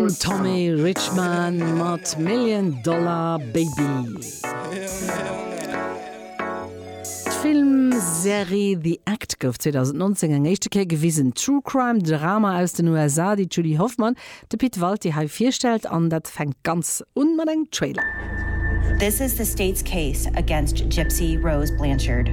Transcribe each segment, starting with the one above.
Den Tommy Richman mat Million Dollar Baby. D'Filmserie The Act gouf 2019 eng éischte Kéier gewisen. D'True Crime Drama aus den USA, déi d'Julie Hoffmann de Pit Walti hei virstellt, an dat fänkt ganz un mat engem Trailer. This is the state's case against Gypsy Rose Blanchard.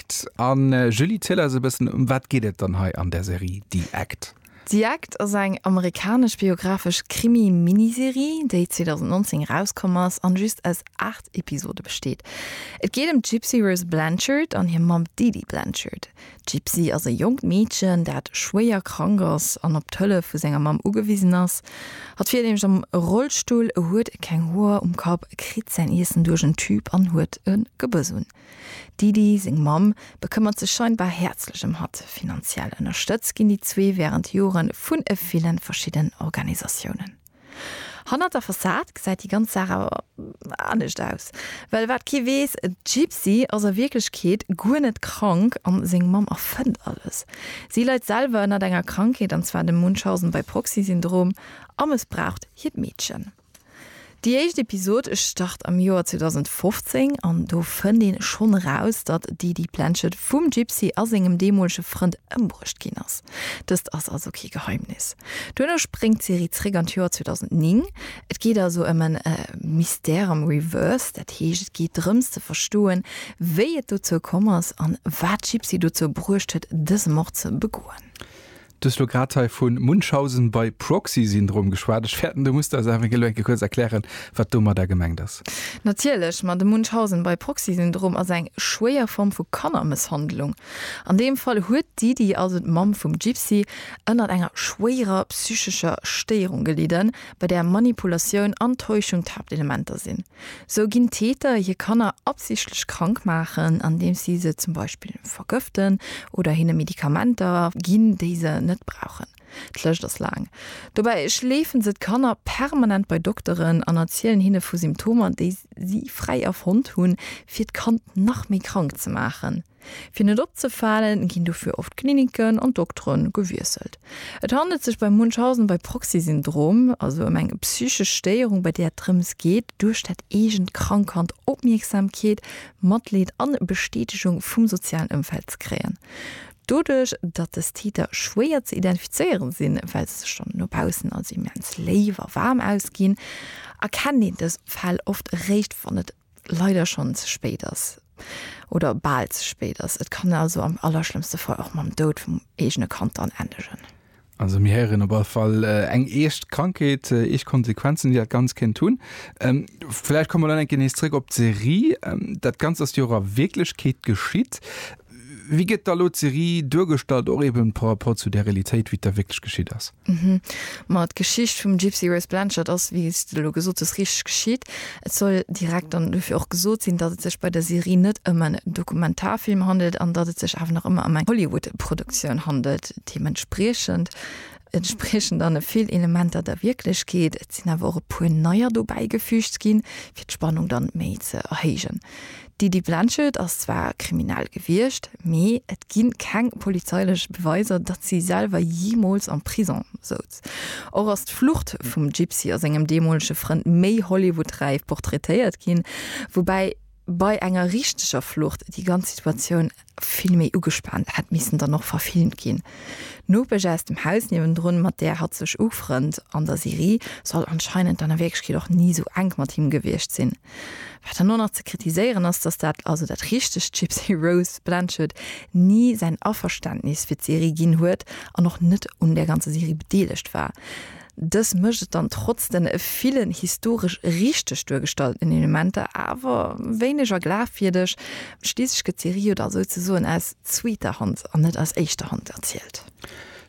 Act. An Julie, ziel eis e bëssen, ëm wat geet et dann hei an der Serie The Act? The Act ass eng amerikanesch biographesch Krimi-Miniserie, déi 2019 erauskomm ass an just aus 8 Episode besteet. Et geet ëm d'Gypsy Rose Blanchard an hir Mamm Dee Dee Blanchard. D'Gypsy ass e jonkt Meedchen, dat schwéier krank ass an op d'Hëllef vu senger Mamm ugewisen ass. Hatt fiert nämlech am Rollstull, huet keng Hoer um Kapp, kritt säin Iessen duerch en Tube an huet e Gebëss un. D'Didi, seng Mamm, bekëmmert sech scheinbar häerzlech ëm hatt. Finanziell ënnerstëtzt ginn déi zwee wärend Jore vun e villen verschiddenen Organisatiounen. Hannert der Fassad gesäit déi ganz Saach awer anescht aus. Well wat kee weess, d'Gypsy ass a Wierklechkeet guer net krank an seng Mamm erfënnt alles. Si leit selwer ënnert enger Krankheet, an zwar dem Munchausen-by-proxy-Syndrom, a mëssbraucht hiert Meedchen. Déi éischt Episod start am Joer 2015 an do fënnt een schonn eraus, datt d'Edie Planchet vum Gypsy a sengem deemolege Frënd ëmbruecht ginn ass. Dëst ass also kee Geheimnis. Duerno spréngt d'Serie zréck an d'Joer 2009. Et geet also ëm en Mystère am Reverse, dat heescht et geet drëms ze verstoen, wéi et dozou komm ass an wat d'Gypsy dozou bruecht huet dëse Mord ze begoen. Du hues elo grad hei vu Munchausen by Proxy-Syndrom geschwat. Ech fäerten, du musst eis awer elo enke kuerz erklären, wat domadder gemengt ass. Natierlech, ma de Munchausen by Proxy-Syndrom ass eng schwéier Form vu Kannermësshandlung. An deem Fall huet d'Didi, also d'Mamm vum Gypsy, ënnert enger schwéierer psychescher Stéierung gelidden, bei där Manipulatioun an Täuschung d'Haaptelementer sinn. Sou ginn d'Täter hir Kanner absichtlech krank maachen, andeems si se zum Beispill vergëften oder hinne Medikamenter ginn, déi se net brauchen. D'Lëscht ass laang. Dobäi schleefen se d'Kanner permanent bei Dokteren an erzielen hinne vu Symptomer, déi si fräi erfonnt hunn, fir d'Kand nach méi krank ze maachen. Fir net opzefalen, ginn dofir oft d'Kliniken an d'Doktere gewiesselt. Et handelt sech bei Munchausen bei Proxy-Syndrom also ëm eng psychesch Stéierung, bei där et drëms geet, duerch dat eegent krank Kand Opmierksamkeet, Matleed an Bestätegung vum sozialen Ëmfeld ze kréien. Doduerch, datt dës Täter schwéier ze identifizéiere sinn, well se sech dann no baussen als immens léif a waarm ausginn, erkennt een dës Fäll oft eréischt, wann et leider schonn ze spéit ass oder bal ze spéit ass. Et kann also am allerschlëmmste Fall och mam Doud vum eegene Kand dann endegen. Also mir héieren op all Fall eng eescht Krankheet, eescht Konsequenzen, déi dat Ganzt kéint hunn. Vläicht komme mer dann eng Kéier nees zréck op d'Serie. Dat Ganzt ass jo och a Wierklechkeet geschitt. Wéi gëtt da lo d'Serie duergestallt, och eben par rapport zu där Realitéit, wéi et da wierklech geschitt ass? Ma d'Geschicht vum Gypsy Rose Blanchard ass, wéi s de elo gesot hues, richteg geschitt. Et soll direkt dann dofir och gesot sinn, datt et sech bei der Serie net ëm en Dokumentarfilm handelt an datt et sech awer nach ëmmer ëm eng Hollywood-Produktioun handelt. Deementspriechend entspriechen dann e vill Elementer der Wierklechkeet, et sinn awer och e puer neier dobäi gefüügt ginn, fir d'Spannung dann méi ze erhéijen. D'Idi Blanchett ass zwar kriminell gewiescht, mee et gi keng polizeilech Beweiser, datt si selwer jeemools am Prisong souz. Och ass d'Flucht vum Gypsy a sengem deemolege Frënd méi Hollywood-räif portraitéiert ginn, woubäi bei enger richteger Flucht déi ganz Situatioun, Vill méi ugespaant hätt missen dann och verfilmt ginn. D'Nopesch aus dem Haus niewendrun, mat där hatt sech ufrënnt an der Serie, soll anscheinend dann a Wierklechkeet och ni esou enk mat him gewiescht sinn. Wat dann och nach ze kritiséieren ass, dass dat, also dat richtegt Gypsy Rose Blanchard, ni säin Averständnis fir d'Serie ginn huet an och net un där ganzer Serie bedeelegt war. Dës mécht et dann trotz den villen historesch richteg duergestallten Elementer awer wéineger glafwierdeg. Schliisslech gëtt d'Serie jo da souzesoen aus zweeter Hand an net aus éischter Hand erzielt.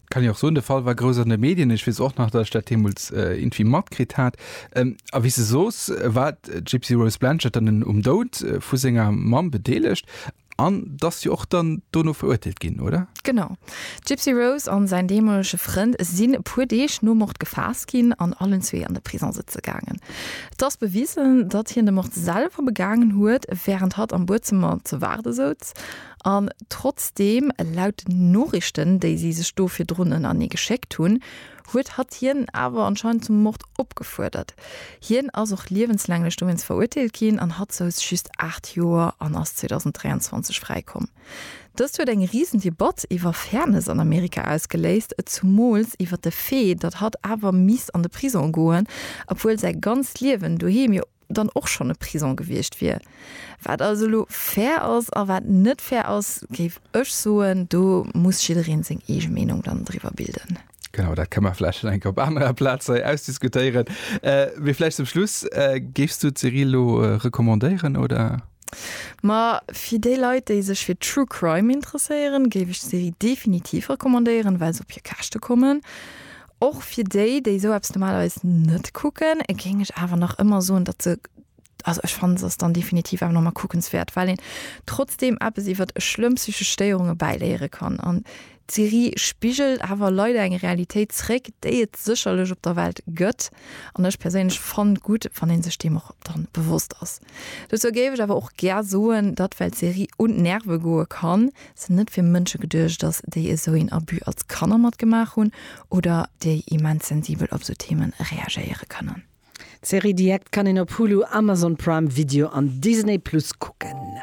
Dat kann een och soen. De Fall war grouss an de Medien. Ech weess och nach, datt ech dat deemools irgendwie matkritt hat. A wéi s de soos, war d'Gypsy Rose Blanchard dann um Doud vu senger Mamm bedeelegt. An dass si och dann dono verurteelt ginn, oder? Genau. D'Gypsy Rose an säin deemolege Frënd sinn e puer Deeg nom Mord gefaasst ginn an allen zwee an de Prisong sëtze gaangen. Et ass bewisen, datt hien de Mord selwer begaangen huet, wärend hatt am Buedzëmmer ze waarde souz. An trotzdeem, laut den Noriichten, déi si sech do virdrun ënnerneegeschéckt hunn, huet hatt hien awer anscheinend zum Mord opgefuerdert. Hien ass och liewenslänglech dowéinst verurteelt ginn an hatt souz just 8 Joer an ass 2023 fräi komm. Dëst huet eng risen Debatt iwwer Fairness an Amerika ausgeléist, zumools iwwer de Fait, datt hatt awer misst an de Prisong goen, obwuel säi ganzt Liewen doheem jo. dann och schonn e Prison gewiescht wier. Wat also elo fair ass a wat net fair ass, géif ech soen, do muss jiddereen seng eege Meenung dann driwwer bilden. Genau, dat ka mer vläicht nach eng Kéier op anerer Plaz hei ausdiskutéieren. Mee vläicht zum Schluss, Géifs du d'Serie elo recommandéieren, oder? Ma fir déi Leit, déi sech fir True Crime interesséieren, géif ech d'Serie definitiv recommandéieren, well se op hir Käschte kommen. Och fir déi, déi esou eppes normalerweis net kucken, géing ech awer nach ëmmer soen, datt se, also ech fannen, se ass dann definitiv awer nach emol kuckenswäert, well een trotzdeem eppes iwwert schlëmm psychesch Stéierunge bäiléiere kann. An d'Serie spigelt awer leider eng Realitéit zréck, déi et sécherlech op der Welt gëtt, an ech perséinlech fannt gutt, wann ee sech deem och dann bewosst ass. Dozou géif ech awer och gär soen, datt well d'Serie un d'Nerve goe kann, sinn net fir Mënsche geduecht ass, déi esou een Abus als Kanner matgemaach hunn oder déi immens sensibel op esou Themen reagéiere kënnen. D'Serie The Act kann een op Hulu, Amazon Prime Video an Disney Plus kucken.